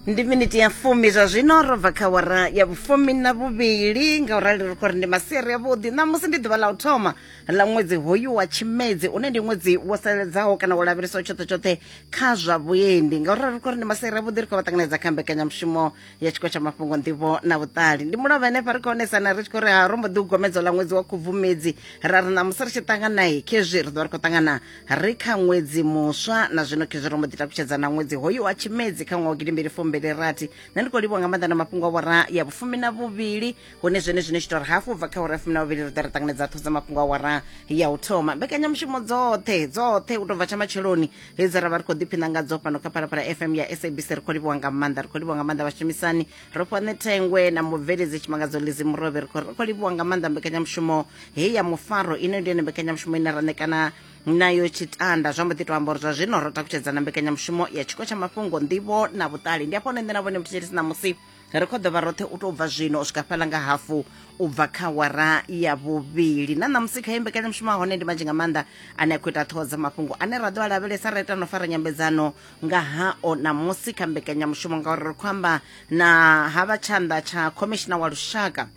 ndi miniti ya fumi zwa zwino ro bva kha wara ya vhufumi na vhuvhili nga u rali ri khou ri ndi masiari avhuḓi ṋamusi ndi ḓuvha ḽa u thoma ḽa ṅwedzi hoyu wa tshimedzi une ndi ṅwedzi wo saledzaho kana wo lavheleswa tshoṱhe tshoṱhe kha zwa vhuendi nga u rali ri khou ri ndi masiari avhuḓi ri khou vha ṱanganedza kha mbekanyamushumo ya tshiko tsha mafhungo nḓivho na vhuṱali ndi mulovha henefha ri khou onesana ri tshi khou ri ha ro mbo ḓi u gomedzo ḽa ṅwedzi wa khubvumedzi ra ri ṋamusi ri tshi ṱanganayi khezwi ri ḓo vha ri khou ṱangana ri kha ṅwedzi muswa na zwino khezwi ro mbo ḓi takutshedza na ṅwedzi hoyu wa tshimedzi kha ṅwaha wa gidimbili fumbili rathi nṋe ndi khou livhuwa nga maanḓa na mafhungo a wara ya vhufumi na vhuvhili hune zwone zwino tshi tori hafhu bva kha wara ya fumi na vhuvhili ri ḓo ri ṱanganedza ṱho dza mafhungo a wara ya u thoma mbekanyamushumo dzoṱhe dzoṱhe u tou bva tsha matsheloni hedzi ra vha ri khou ḓiphina ngadzo fhano kha phalaphala fm ya sabc ri khou livhuwa nga maanḓa ri khou livhuwa nga maanḓa vhashumisani rofhane thengwe na mubveledzi tshimangadzo lizi murovhe ri khou livhuwa nga maanḓa mbekanyamushumo heyi ya mufaro ino ndi yone mbekanyamushumo ine ra ṋekana nayo tshitanda zwa mbo ḓi to amba uri zwa zwino ro takutshedza na mbekanyamushumo ya tshiko tsha mafhungo nḓivho na vhuṱali ndi afho hone nṋe na vhone muthethelisi ṋamusi ri khou ḓovha roṱhe u tou bva zwino u swika fhala nga hafu u bva kha wara ya vhuvhili na ṋamusi kha imbekanyamushumo a hone ndi manzhi nga maanḓa ane a khou ita ṱhoho dza mafhungo ane ra ḓo a lavhelesa ra ita no fara nyambedzano nga hao ṋamusi kha mbekanyamushumo ngauri ri khou amba na ha vha tshanḓa tsha khomishina wa lushaka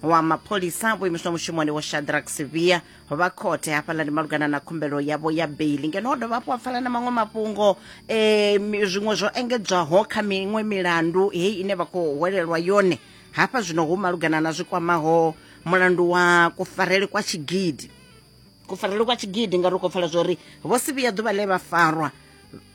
wa mapholisa vho imiswa mushumoni wo shadrack sivia vha khothe hafhaḽani malugana na khumbelo yavho ya beili ngeno o dovha hafhu wa pfala na maṅwe mafhungo um zwiṅwe zwo engedzwaho kha miṅwe milandu heyi ine vha khou hwelelwa yone hafha zwino hu malugana na zwi kwamaho mulandu wa kufarele kwa tshigidi kufarelwe kwa tshigidi ngauri u khou pfala zwori vho si vhuya ḓuvha ḽe vha farwa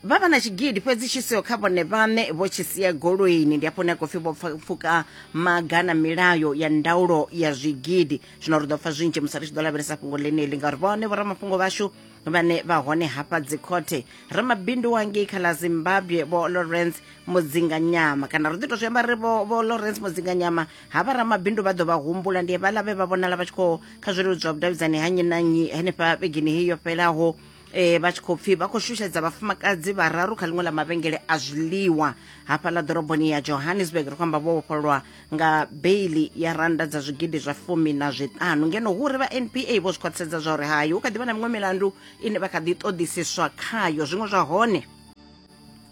vha vha na tshigidi fhedzi tshi siho kha vhone vhaṋe vho tshi sia goloini ndi afho hune a khou pfi vho pfuka maga na milayo ya ndaulo ya zwigidi zwino ri ḓo pfa zwinzhi musi ri tshi ḓo lavhelesa fhungo ḽeneḽi ngauri vhone vhoramafhungo vhashu vhane vha hone hafha dzikhothe ramabindu wangei kha ḽa zimbabwe vho lawrence mudzinganyama kana ri ḓi to zwi amba ri vho lawrence mudzinganyama ha vha ramabindu vha ḓo vha humbula ndi vhala vhe vha vhonala vha tshi khou kha zwileludzi zwa vhudavhidzani ha nnyi na nnyi henefha vhegini heyi yo fhelaho um eh, vha tshi khou pfhi vha khou shushedza vhafumakadzi vhararu kha ḽiṅwe ḽa mavhengele a zwiḽiwa hafha ḽa ḓoroboni ya johannesburg ri khou amba vho vhofhololwa nga beili ya randa dza zwigidi zwa fumi na zwiṱanu ngeno hu ri vha npa vho zwi khwaṱhisedza zwa uri hayi hu kha ḓi vha na miṅwe milandu ine vha kha ḓi ṱoḓisiswa khayo zwiṅwe zwa hone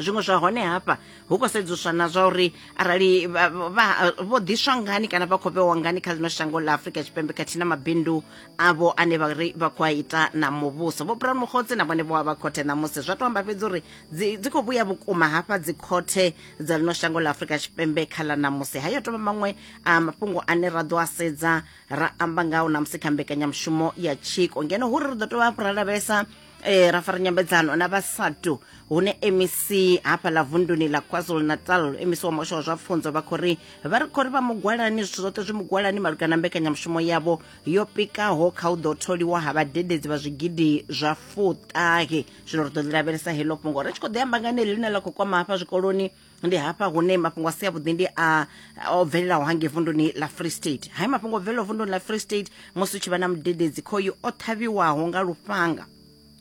zwiṅwe zwa hone hafha hu khou sedzuswa na zwa uri arali vho ḓiswa ngani kana vha khou vhewa ngani kha ḽino shango ḽa afurika tshipembe khathihi na mabindu avho ane vha ri vha khou a ita na muvhuso vho brown mukhotsi na vhone vho vha khothe ṋamusi zwa to amba fhedzi uri dzi khou vhuya vhukuma hafha dzi khothe dza ḽino shango ḽa afurika tshipembe kha ḽa ṋamusi hayo tovha maṅwe a mafhungo ane ra ḓo a sedza ra amba ngao ṋamusi kha mbekanyamushumo ya tshiko ngeno hu ri ri ḓo tovha hafhu ra lavhelesa e, ra fara nyambedzano na vhasatu hune mec hafha ḽa vunduni ḽa kwazulu natal mec wa muhasho wa zwa pfunzo vha khou ri vha ri khou ri vha mugwalani zwithu zwoṱhe zwi mugwalani malugana mbekanyamushumo yavho yo pikaho kha u ḓo tholiwa ha vhadededzi vha zwigidi zwa fuṱahe zwino ri ḓo ḽi lavhelesa heḽo fhungo ri tshi khou ḓi amba nga ne ḽine ḽa khou kwama hafha zwikoloni ndi hafha hune mafhungo a si avhuḓi ndi a o bvelelaho hangei vunduni ḽa free state hayi mafhungo o bvelelaho vunduni ḽa free state musi u tshi vha na mudededzi khoyu o ṱhavhiwaho nga lufhanga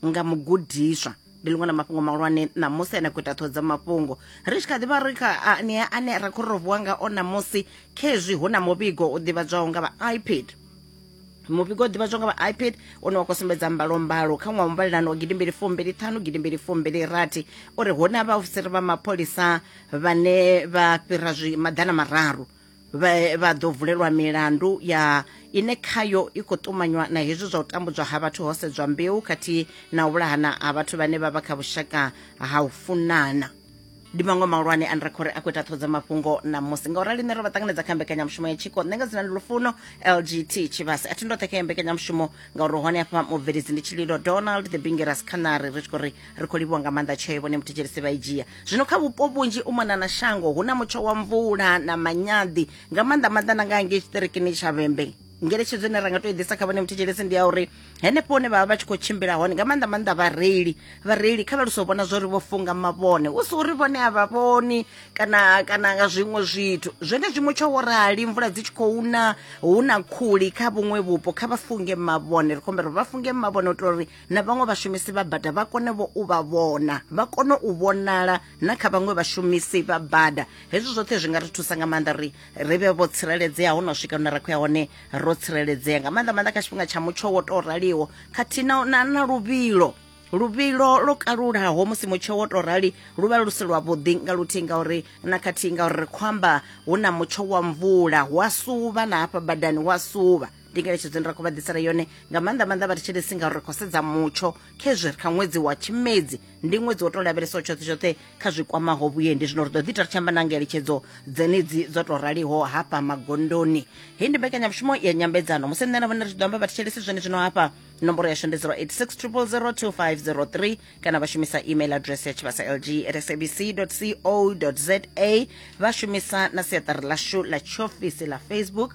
nga mugudiswa ndi ḽiṅwe na mafhungo mahulwane ṋamusi ane a khou ita ṱhoho dza mafhungo ri tshi kha ḓivha ri kha anea ane ra khou ri ro vuwa ngao ṋamusi khezwi hu na muvhigo u ḓivhadzwaho nga vha ipad muvhigo ḓivha zwo nga vha ipad une wa khou sumbedza mbalombalo kha ṅwaha muvhalelano wa gidimbili fumbili ṱhanu gidimbili fumbili rathi uri hu na vhaofisiri vha mapholisa vhane vha fhira zwi maḓana mararu vha ḓo vulelwa milandu ya ine khayo i khou ṱumanywa na hezwi zwa u tambudzwa ha vhathu ho sedzwa mbeu khathihi na u vhulahana ha vhathu vhane vha vha kha vhushaka ha u funana ndi maṅwe mahulwane ane ra khou ri a khou ita ṱhodzo mafhungo ṋamusi nga u rali nṋe ro vha ṱanganedza kha mbekanyamushumo ya tshiko nṋe nga dzina ndi lufuno lgt tshivhasi a thi ndoṱhe kha ya mbekanyamushumo ngauri hone hafha mubveledzi ndi tshililo donald the bingeras canary ri tshi khou ri ri khou livhiwa nga maanḓa tsheo vhone muthetshelesi vha i dzhia zwino kha vhupo vhunzhi u mona na shango hu na mutsho wa mvula na manyaḓi nga maanḓa maanḓa na nga hangei tshiṱirikini tsha vhembe ngeletshedzo ine ra nga to i ḓisa kha vhane muthetshelesi ndi ya uri henefho hune vhavha vha tshi khou tshimbila hone nga maanḓa maanḓa vhareili vhareili kha vha luse u vhona zwa uri vho funga mavhone u si uri vhone a vha vhoni kana kana nga zwiṅwe zwithu zwone zwiṅwe tsho wo rali mvula dzi tshi khou na hu na khuli kha vhuṅwe vhupo kha vha funge mavhone ri khou humbela uri vha funge mavhone u itela uri na vhaṅwe vhashumisi vha bada vha kone vho u vha vhona vha kone u vhonala na kha vhaṅwe vhashumisi vha bada hezwi zwoṱhe zwi nga ri thusa nga maanḓa uri ri vhe vho tsireledzea ho no swika hune ra khou ya hone ro tsireledzea nga maanḓa maanḓa kha tshifhinga tsha mutsho wo tou raliho khathihi na na luvhilo luvhilo lo kalulaho musi mutsho wo tou rali lu vha lu si lwavhuḓi nga luthihi ngauri na khathihi ngauri ri khou amba hu na mutsho wa mvula hu a suvha na hafha badani hu a suvha ndi ngeletshedzo ndi ra khou vha ḓisela yone nga maanḓa maanḓa vha ri tshi lisi ngauri ri khou sedza mutsho khezwi ri kha ṅwedzi wa tshimedzi ndi ṅwedzi wo tou lavhelesaho tshoṱhe tshoṱhe kha zwi kwamaho vhuendi zwino ri ḓo ḓi ta ri tshi amba na ngeletshedzo dzenedzi dzo tou raliho hafha magondoni hei ndi mbekanyamushumo ya nyambedzano musi nṋe na vhone ri tshi ḓo amba vha ri tshi lisi zwone zwino hafha nomboro yashu ndi 086 0002503 kana vha shumisa email address ya tshivhasa lg at sabc co za vha shumisa na siaṱari ḽashu ḽa tshiofisi ḽa facebook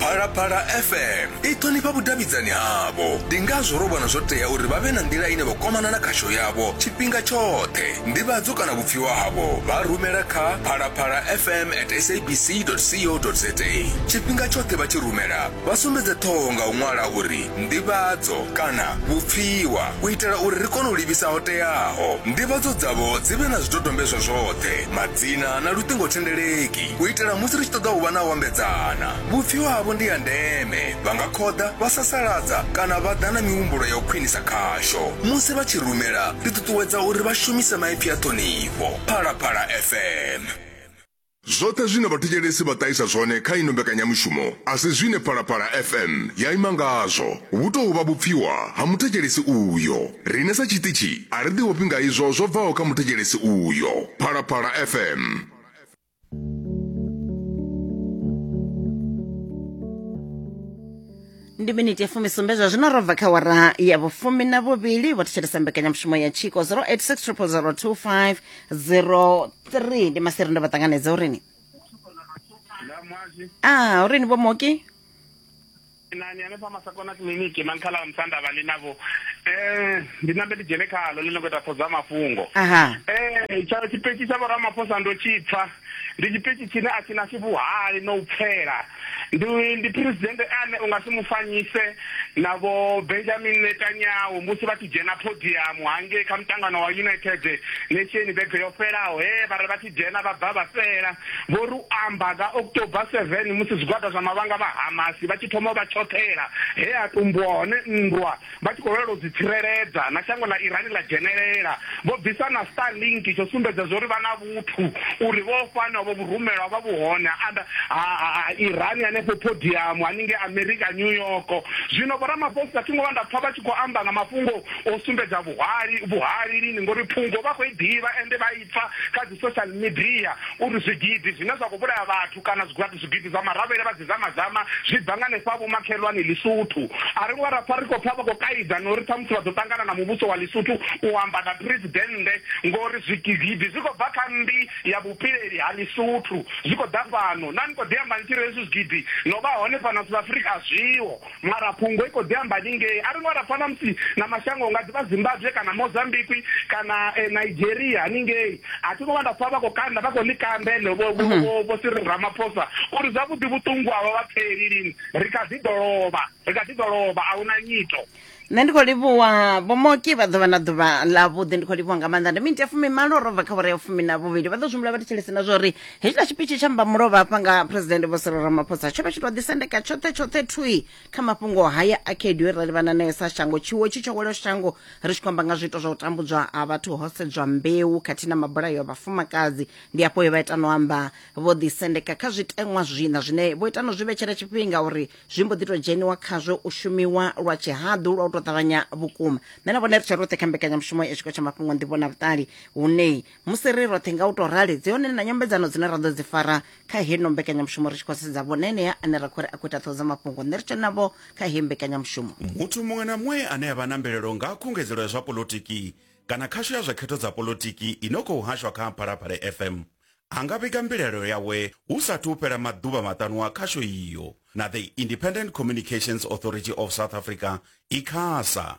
phalaphala fm i ṱhonifha vhudavhidzani havho ndi ngazwo ro vhona zwo tea uri vha vhe na nḓila ine vha kwamana na khasho yavho tshifhinga tshoṱhe ndivhadzo kana vhupfiwa havho vha rumela kha phalaphala fm at sabc co za tshifhinga tshoṱhe vha tshi rumela vha sumbedze ṱhoho nga u ṅwala uri ndivhadzo kana vhupfiwa u itela uri ri kone u livhisa ho teaho ndivhadzo dzavho dzi vhe na zwidodombedzwa zwoṱhe Dzina na luṱingothendeleki u itela musi ri tshi ṱoḓa u vha na u ambedzana. Vhupfiwa havho ndi ha ndeme, vha nga khoḓa, vha sasaladza kana vha ḓa na mihumbulo ya u khwinisa khasho. Musi vha tshi rumela, ri ṱuṱuwedza uri vha shumise maipfi a ṱhonifho. Phalaphala FM. Zwoṱhe zwine vhathetshelesi vha ṱahisa zwone kha ino mbekanyamushumo a si zwine Phalaphala FM ya ima ngazwo, hu tou vha vhupfiwa ha muthetshelesi uyo. Riṋe sa tshiṱitshi a ri ḓiofhi nga izwo zwo bvaho kha muthetshelesi uyo. Phalaphala FM. ndi miniti ya fumisumbe zwa zwino ro bva kha wara ya vhufumi na vhuvhili vho thetshelesa mbekanyamushumo ya tshiko 0860002503 ndi maseri ndo vha ṱanganedza urini na mwazi a urini vho moki nani hanefha masakona kiliniki na nkhala musanda vhali navho um ndi nambe ndi dzhene khalo ḽi no khou ita ṱhoḓa mafhungo um tsha tshipetshi tsha vhoramaphosa ndo tshipfa ndi tshipetshi tshine a tshi na tshivhuhali na u pfela ndi ndi presidente ane u nga si mu fanyise na vho benjamin netanyahu musi vha tshi dzhena podiyamu hangei kha mutangano wa united nation vhege yo fhelaho he vha ri vha dzhena vha bva vha fhela, vho ri u amba nga October 7 musi zwigwada zwa mavhanga vha Hamas vha tshi thoma u vha tshoṱhela he ha tumbuwa hone nndwa vha tshi khou lwela u dzi tsireledza na shango ḽa Iran ḽa dzhenelela, vho bvisa na Starlink tsho sumbedza zwo ri vha na vhuthu uri vho fhano vho vhurumelwa vha vhuhone ha anda ha ha Iran hanefho Podium haningei America New York. Zwino vho Ramaphosa thi ngo vha nda pfa vha tshi khou amba nga mafhungo o sumbedza vhuhali vhuhali lini ngori phungo vha khou i ḓivha ende vha i pfa kha dzi social media uri zwigidi zwine zwa khou vhulaya vhathu kana zwigwati zwigidi zwa maravhele vha dzi zamazama zwi bva nga hanefha vhomakhelwani lisuthu a ri ngo ra pfa ri khou pfa vha khou kaidza na uri ṱhamusi vha ḓo ṱangana na muvhuso wa lisuthu u amba na presidennde ngori zwigidi zwi khou bva kha mmbi ya vhupileli ha lisuthu zwi khou ḓa fhano na ni khou ḓi amba ni tshi ri hezwi zwigidi no vha hone fhano south africa a zwiho mara fhungo i khou ḓi amba ningei a ri ngo ra fana musi na mashango nga ḓivha zimbabwe kana mozambiqui kana eh, nigeria haningei a thi ngo vha nda pfa vha khou kanda vha khou ḽi kanda ene vho mhm. siri ramaphosa uri zwavhuḓi vhuṱungu avha vha pfeli lini ri kha ḓi ḓo lovha ri kha ḓi ḓo lovha a hu na nyito nṋe ndi khou livhuwa vhomoki vha ḓuvha na ḓuvha ḽa vhuḓi ndi khou livhuwa nga maanḓa ndi minti ya fumi malo ro bva kha vhore ya fumi na vhuvhili vha ḓo zwimbula vha thetshelese na zwa uri hetshiḽa tshipitshi tsha mbamulovha hafha nga phuresidennde vho siro ramaphosa tsho vha tshi tou ḓisendeka tshoṱhe tshoṱhe thui kha mafhungo haya a khaedu ra livhana nayo sa shango tshiwo tshi tsho welo shango ri tshi khou amba nga zwiito zwa u tambudzwa ha vhathu ho sedzwa mbeu khathihi na mabulayo a vhafumakadzi ndi afho he vha ita no amba vho ḓisendeka kha zwiteṅwa zwina zwine vho ita no zwi vhetshela tshifhinga uri zwi mbo ḓi tou dzheniwa khazwo u shumiwa lwa tshihaḓu lwa u tou ṱavhanya vhukuma nṋe na vhone ri tshe roṱhe kha mbekanyamushumo ya tshiko tsha mafhungo nḓivho na vhuṱali hune musi ri roṱhe nga u tou rali dzi hone na nyambedzano dzine ra ḓo dzi fara kha heno mbekanyamushumo ri tshi khou sedza vhone enea ane ra khou ri a khou ita ṱhoho dza mafhungo nṋe ri tshe navho kha heyi mbekanyamushumo muthu muṅwe na muṅwe ane a vha na mbilelo nga ha khungedzelo ya zwa polotiki kana khasho ya zwa khetho dza polotiki i no khou hashwa kha phalaphala fm a nga vhiga mbilelo yawe hu sathu u fhela maḓuvha maṱanu a khasho iyo na the independent communications authority of south africa icasa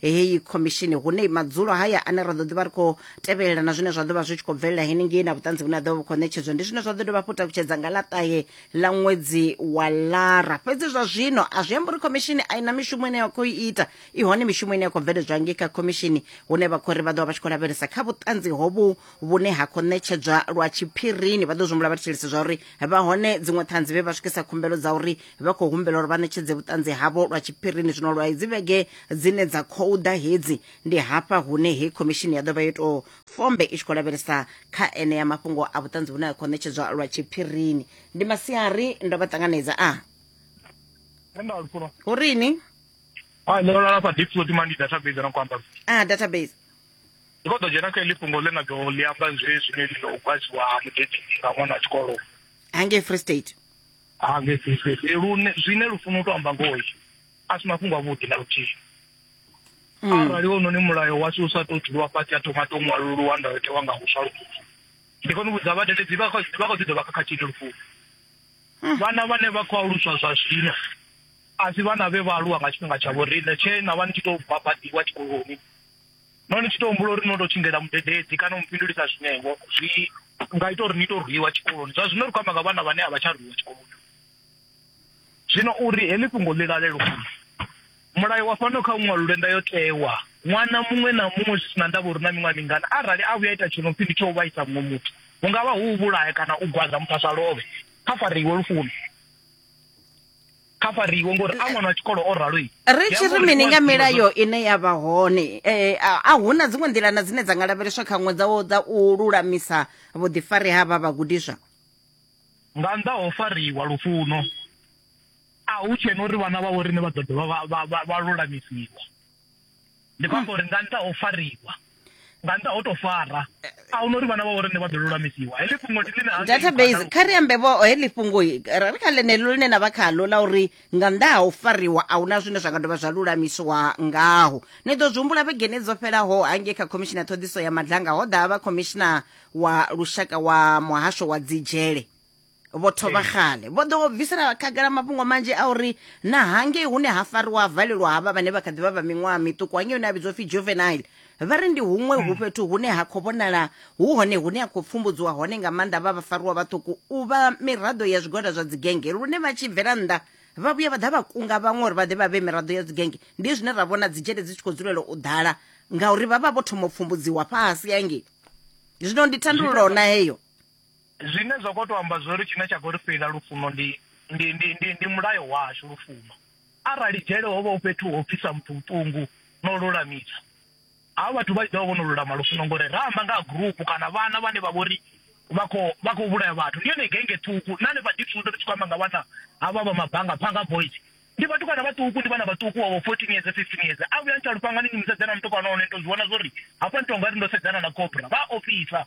heyi khomishini hune madzulo haya ane ra ḓo ḓivha ri khou tevhelela na zwine zwa ḓo vha zwi tshi khou bvelela henengei na vhuṱanzi vhune ha ḓo vha vhu khou ṋetshedzwa ndi zwine zwa ḓo dovha hafhu takutshedza nga ḽaṱahe ḽa ṅwedzi wa lara fhedzi zwa zwino a zwi amba uri khomishini a i na mishumo ine ya khou i ita i hone mishumo ine ya khou bveledzwa ngei kha khomishini hune vha khou ri vha ḓo vha vha tshi khou lavhelesa kha vhuṱanzi hovhu vhune ha khou ṋetshedzwa lwa tshiphirini vha ḓo zwi humbula vha thetshelese zwa uri vha hone dziṅwe ṱhanzi vhe vha swikisa khumbelo dza uri vha khou humbela uri vha ṋetshedze vhuṱanzi havho lwa tshiphirini zwino lwa idzi vhege dzine dza khou ḓa hedzi ndi hafha hune hei khomishini ya ḓo vha yo tou fombe i tshi khou lavhelesa kha ene ya mafhungo a vhuṱanzi vhune a khou ṋetshedzwa lwa tshiphirini ndi masiari ndo vha ṱanganedza a hu rini a ah, ndo lala sa deep float mandi database na kwamba a ah, database ndi khou ḓo dzhena kha iḽi fhungo ḽe na ḓo ḽi amba zwezwi ḽi ḽo kwadziwa mudedzi nga ṅwana a tshikoloni hangei free state ha nge fhedzifhedzi lune zwine lufuno to amba ngoho a si mafhungo avhuḓi na luthihi mm. arali wononi mulayo washu u sa to dzhiwa fhasi a thoma to ṅwaluluwa ndayotewa nga huswa lufuno ndi kone u vhudza vhadededzi vha khou ḓi dovha khakhathini lufuno mm. vhana vhane vha khou aluswa zwa zwino a si vhana vhe vha aluwa nga tshifhinga tsha vhoriṋe tshe na vha ni tshi tou babadiwa tshikoloni no ni tshi tou humbula uri no tou tshindela mudededzi kana u mufhindulisa zwinewo zwi nga ita uri ni tou rwiwa tshikoloni zwa zwino ri khou amba nga vhana vhane a vha tsha rwiwa tshikoloni zwino uri heḽi fhungo ḽi lalelwa mulayo wa fhano kha ṅwalo lwenda yo tewa ṅwana muṅwe na muṅwe zwi sina ndavha uri na miṅwaha mingana arali a vhuya ita tshino pfi ndi tsho vhaisa muṅwe muthu hu ngavha hu vhulaya kana u gwaza muthu a sa lovhe kha fariwe lufuni kha fariwe ngori a ṅwana wa tshikolo o ralo ri tshi ri mini nga milayo ine ya vha hone eh, a hu na dziṅwe nḓilana dzine dza nga lavheleswa kha ṅwe dzawo dza u lulamisa vhuḓifari ha vha vhagudiswa nga nnḓa ho fariwa lufuno a hu tshena uri vhana vha vho rine vha ḓo dovha vha lulamisiwa ndi khou amba uri nga nṱha ho fariwa nga nṱha ho to fara a hu no uri vhana vha vhorine vha ḓo lulamisiwa heḽi fhungo ndi ḽine database kha ri ambe vho heḽi fhungo ri kha ḽeneḽo ḽine na vha khalo ḽa uri nga nnḓa ha u fariwa a huna zwine zwa nga dovha zwa lulamisiwa ngaho ni ḓo zwi humbula vhegeni dzo fhelaho hangei kha khomishina ṱhoḓiso ya madlanga ho ḓa vha khomishina wa lushaka wa muhasho wa dzidzhele vho thoma xale vho ḓo bvisela khagala mafhungo manzhi a uri na hangei hune ha fariwa ha valelwa havha vhane vha kha ḓivha vha miṅwaha miṱuku hangei hune a vhidzwa pfhi juvenile vha ri ndi huṅwe hu mm. fhethu hune ha khou vhonala hu hone hune ha khou pfumbudziwa hone nga maanḓa vha vha fariwa vhaṱuku u vha miraḓo ya zwigwada zwa dzigenge lune vha tshi bvela nnḓa vha vhuya vha ḓa vha kunga vhaṅwe uri vha ḓe vha vhe miraḓo ya dzigenge ndi zwine ra vhona dzitshele dzi tshi khou dzulela u ḓala ngauri vha vha vho thoma u pfumbudziwa fhasi hangei zwino ndi thandululo na heyo Zwine zwa khou tou amba zwori tshine tsha khou ri fhela lufuno ndi ndi ndi ndi ndi mulayo washu lufuno. Arali dzhele hovha hu fhethu ho pfisa muthu vhuṱungu no lulamisa havha vhathu vha tshi ḓovha vho no lulama lufuno ngori ra amba nga ha gurupu kana vhana vhane vha vhori vha kho vha kho vhulaya vhathu ndi yone genge ṱhukhu na hanefha Diepsloot ri tshi khou amba nga vhana havha vha mabanga phanga boys ndi vhathu kana vhaṱuku ndi vhana vhaṱuku wa 14 years 15 years a vhuya ntsha lufhangani ni musedzana mutukana hone to zwi vhona zwori hafha ni tonga ri ndo sedzana na cobra vha ofisa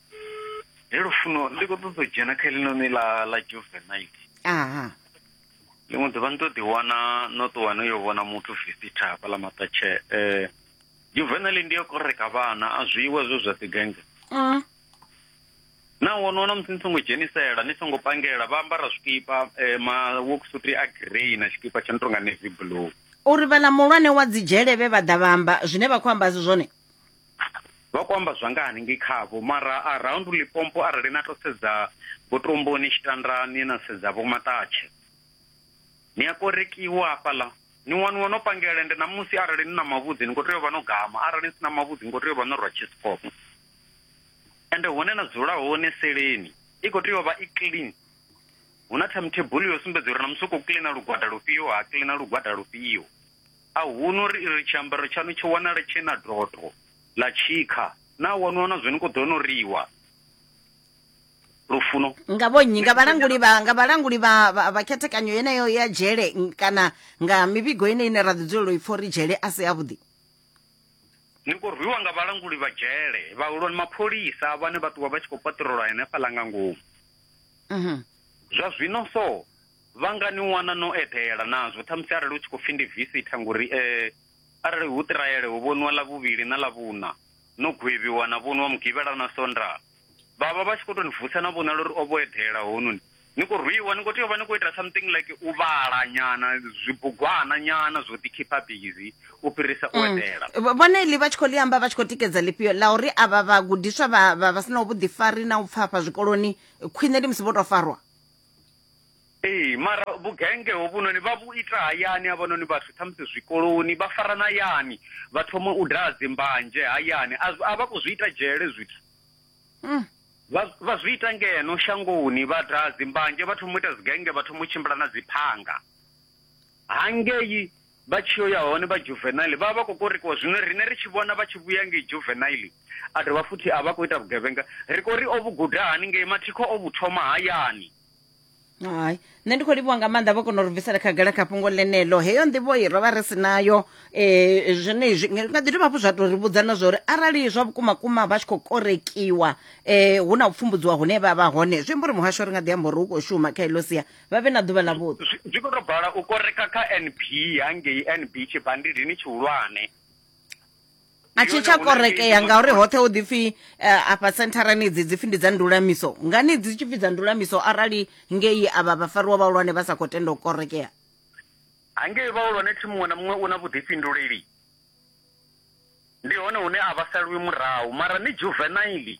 he lufuno ndi khou ṱoḓa u dzhena kha helinoni ḽa ḽa juvenite aha ḽiṅwe ḓuvha ni to ḓi wana no ṱuwa no yo vhona muthu visita hafha ḽa maṱatshe um eh, juvenile ndi yo koreka vhana a zwiwe zwo zwa ḓigenge mm. na wono na musi ni songo dzhenisela ni songo pangela vha ambara zwikipa eh, ma worksuti a grey na tshikipa tsha no tonga navy blue uri vhala muhulwane wa dzidzhelevhe vha ḓa vha amba zwine vha khou amba zwone vha khou amba zwa nga hanengei khavho mara around Limpopo arali na to sedza Vhotomboni, Tshitandani na sedza Vho Maṱatshe ni a korekiwa hafhaḽa ni waniwa no pangela ende ṋamusi arali ni na mavhudzi ni khou tea u vha no gama arali ni si na mavhudzi ni khou tea u vha no rwa tshisikopo ende hune na dzula hone seleni i khou tea u vha i clean hu na timetable yo sumbedza uri na musi u khou cleaner lugwada lufhio ha cleaner lugwada lufhio. A huno ri ri tshiambaro tshaṋu tsho wanala tshee na dotho ḽa tshikha, naa wa nwa na zwo ni khou ḓo no riwa lufuno? Nga vhonnyi? Nga vhalanguli vha nga vhalanguli vha vha khethekanyo yeneyo ya dzhele kana nga mivhigo yeneyi ine ra ḓi dzulela u i pfa uri dzhele a si avhuḓi? Ni khou rwiwa nga vhalanguli vha dzhele, vhahulwane, mapholisa vhane vha ṱuwa vha tshi khou paṱirola henefhaḽa nga ngomu. Zwa zwino so Vha nga ni wana no eḓela nazwo, ṱhamusi arali hu tshi khou pfi ndi visitha, ngori e, arali hu Ṱiraele ho vhoniwa Ḽavhuvhili na Ḽavhuṋa, no gwevhiwa na vhoniwa Mugivhela na Sondaha. Vha vha vha tshi khou tou ni vusa na vhonala uri o vho eḓela hounoni. Ni khou rwiwa, ni khou tea u vha ni khou ita something like u vhala nyana, zwibugwana nyana zwo ḓi khipha bizi u fhirisa u eḓela. Vho- vhone iḽi vha tshi khou ḽi amba vha tshi khou tikedza ḽifhio ḽa uri avha vhagudiswa vha vha vha si naho vhuḓifari na u pfafha zwikoloni khwine ndi musi vho tou farwa ee mara vhugenge hovhunoni vha vhu ita hayani havhanoni vhathu ṱhamusi zwikoloni vha farana hayani vha thoma u daha dzimbanzhe hayani a vha khou zwi ita dzhele zwithu hmm. vha zwi ita ngeno shangoni vha daha dzimbanzhe vha thoma u ita dzigenge vha thoma u tshimbila na dziphanga Hangei vha tshi yo ya hone vha juvenile vha vha vha khou korekiwa, zwino riṋe ri tshi vhona vha tshi vhuya ngei juvenile a dovha futhi a vha khou ita vhugevhenga, ri khou ri o vhu guda hani ngei? Mathikho o vhu thoma hayani. Hai, nṋe ndi khou livhuwa nga maanḓa vho kona u ri bvisela khagala kha fhungo ḽeneḽo. Heyo nḓivho i ro vha ri si nayo eh zwenezwi nga ḓi dovha hafhu zwa tou ri vhudza na zwa uri arali zwa vhukuma kuma vha tshi khou korekiwa eh hu na u pfumbudziwa hune vha vha hone zwi amba uri muhasho ri nga ḓi amba uri hu khou shuma kha eḽo sia vha vhe na ḓuvha ḽa vhuḓi zwi khou tou bala u koreka kha nb hangei nb tshibandidini tshihulwane a tshi tsha korekea ngauri hoṱhe hu ḓipfi eh, afha sentharani idzi dzipfi ndi dza ndulamiso ngani dzi tshi pfi dza ndulamiso arali ngei avha vhafariwa vhahulwane vha sa khou tenda u korekea hangei vhahulwane thi muṅwe na muṅwe u na vhuḓifhinduleli ndi hone hune a vha salwi murahu mara ni juvenaili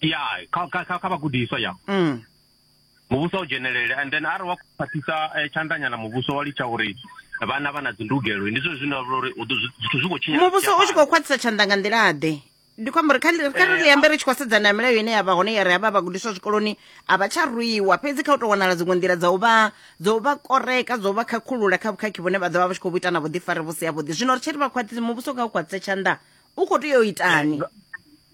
ya kha kha kha kha vhagudiswa ya mm. muvhuso u dzhenelele and then arali wa khwaṱhisa eh, tshandanyana muvhuso wa litsha uri vhana vha na dzindugelo ndi zwone zwine vha uri u ḓo- zwi- zwithu zwi khou tshinya muvhuso u tshi khou khwaṱhisa tshanḓa nga nḓila ḓe ndi khou amba uri kha ri- kha ri ambe ri tshi khou sedzana na milayo ine ya vha hone ya ri havha vhagudiswa zwikoloni a vha tsha rwiwa fhedzi kha u tou wanala dziṅwe nḓila dza u vha dza u vha koreka dza u vha khakhulula kha vhukhakhi vhune vha ḓo vha vha tshi khou vhu ita na vhuḓifari vhu si yavhuḓi zwino ri tshi ri vha khwaṱhise muvhuso kha u khwaṱhise tshanḓa u khou tea u itani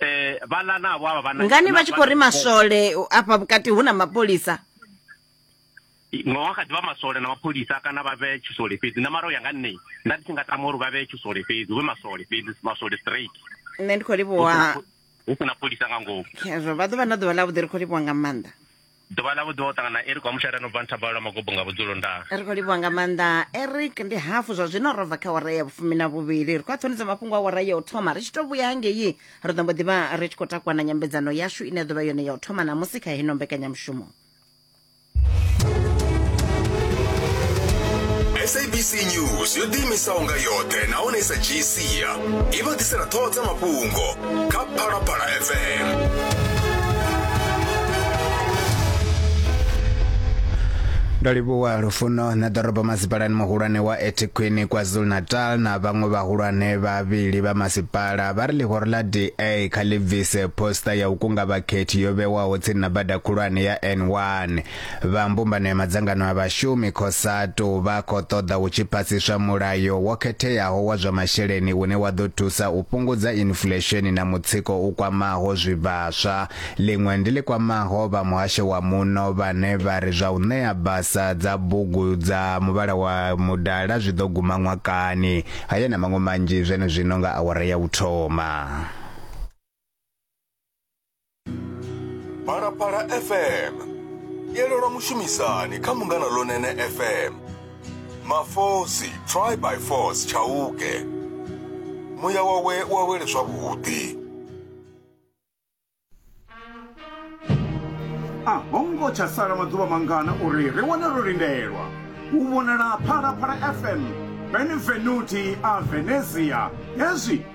eh vhala na vho vha ngani vha tshi khou ri maswole afha vhukati hu na mapholisa no wa kha ḓivha maswole na mapholisa kana vha vhe tshisole fhedzi na mara u ya nga nṋe nda ndi tshi nga tama uri vha vhe tshisole fhedzi hu vhe maswole fhedzi maswole straight nṋe ndi khou livhuwa hu si na pholisa nga ngomu khezwo vha ḓo vha na ḓuvha ḽa vhuḓi ri khou livhuwa nga maanḓa Ḓuvha ḽa vhuḓuvha u ṱangana Eric wa mushaira no bva nthabalo lwa magobo nga vhudzulo nda. Ri khou livhuwa nga maanḓa Eric ndi hafu zwa zwino ro bva kha wara ya vhufumi na vhuvhili ri khou aṱhonisa mafhungo a wara ya u thoma ri tshi tou vhuya hangei ri ḓo mbo ḓivha ri tshi khou takuwa na nyambedzano yashu ine ya ḓovha yone ya u thoma namusi kha heno mbekanyamushumo sabc news yo ḓiimisaho nga yoṱhe nahone i sa dzhii sia i vha ḓisela ṱhoho dza mafhungo kha phalaphala fm ndo livhuwa lufuno na ḓorobo masipalani muhulwane wa etiquini kwazulu-natal na vhaṅwe vhahulwane vhavhili vha masipala vha ri ḽihoro ḽa da kha ḽi bvise posta ya u kunga vhakhethi yo vhewaho tsini na bada khulwane ya n1 Vha mbumbano ya madzangano a vhashumi, Cosatu, vha khou ṱoḓa hu tshi phasiswa mulayo wo khetheaho wa zwa masheleni une wa ḓo thusa u fhungudza inflesheni na mutsiko u kwamaho zwivhaswa. Ḽiṅwe ndi ḽi kwamaho vha muhasho wa muno vhane vha ri zwa u ṋea basa dza bugu dza muvhala wa mudala zwi ḓo guma ṅwakani. Haya na maṅwe manzhi zwenezwino nga awara ya u thoma. phalaphala fm yelelwa mushumisani kha mungana lonene fm mafosi try by force tshauke muya wawe wa wele zwavhuḓi a ho ngo tsha sala maḓuvha mangana uri ri wane ro lindelwa u vhonala phalaphala fm benvenuti a venezia hezwi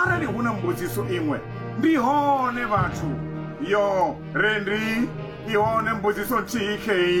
Arali hu na mbudziso iṅwe, ndi hone vhathu. Yoo, re ndi. I hone mbudziso nthihi khei.